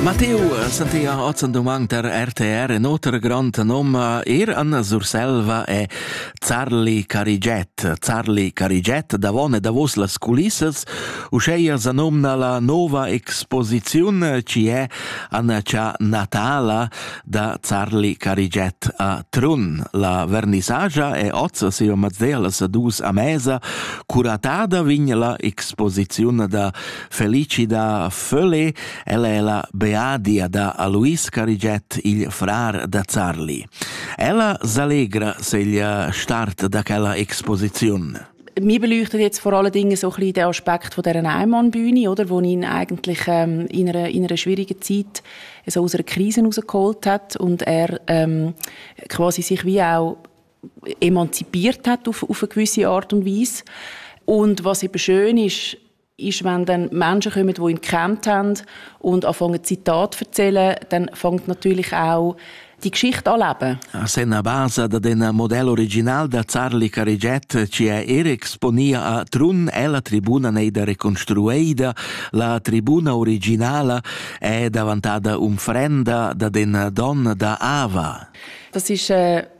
Matteo Santia Ozan Dumang der RTR in oter grand nom er an Surselva e Zarli Cariget. Zarli Cariget davon e davos las culissas, uscheia sa nomna la nova exposiziun ci è Annaccia Natala da Zarli Cariget a Trun. La vernisagia e oz sia mazdelas dus a mesa, curatada vign la exposiziun da Felici da Fölle, ella è la beadia da Alois Carigiet, il frar da Zarli. Ella s'allegra segl start da quella exposiziun. Mich beleuchtet jetzt vor allen Dingen so ein bisschen den Aspekt von dieser Einmannbühne, oder, wo ihn eigentlich ähm, in, einer, in einer schwierigen Zeit so aus einer Krise rausgeholt hat und er ähm, quasi sich wie auch emanzipiert hat auf, auf eine gewisse Art und Weise. Und was eben schön ist, ist, wenn dann Menschen kommen, die ihn gekannt haben und anfangen Zitate zu erzählen, dann fängt natürlich auch die Geschichte an leben. Se na basa da den model original da Zarli Cariget ci è er exponia a Trun è la tribuna neida reconstrueida, la tribuna originala è davantata umfrenda da den Don da Ava. Das ist äh,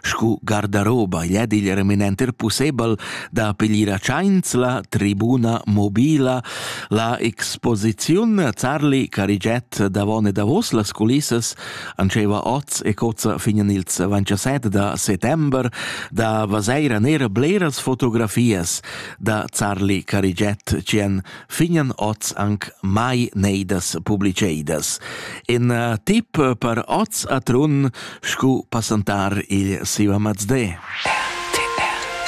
Scu gardaroba gli è igl reminenter pussebel da piglier a tschains la tribuna mobila, la exposiziun Zarli cariget davon e davos las culissas antscheva oz e cozza fin in ils 27 da settember da vaseira nera bleras fotografias da Zarli cariget tschien fignan oz anc mai neidas publiceidas. In uh, tip per oz a Trun scu passantar il Siva Mazde. RTR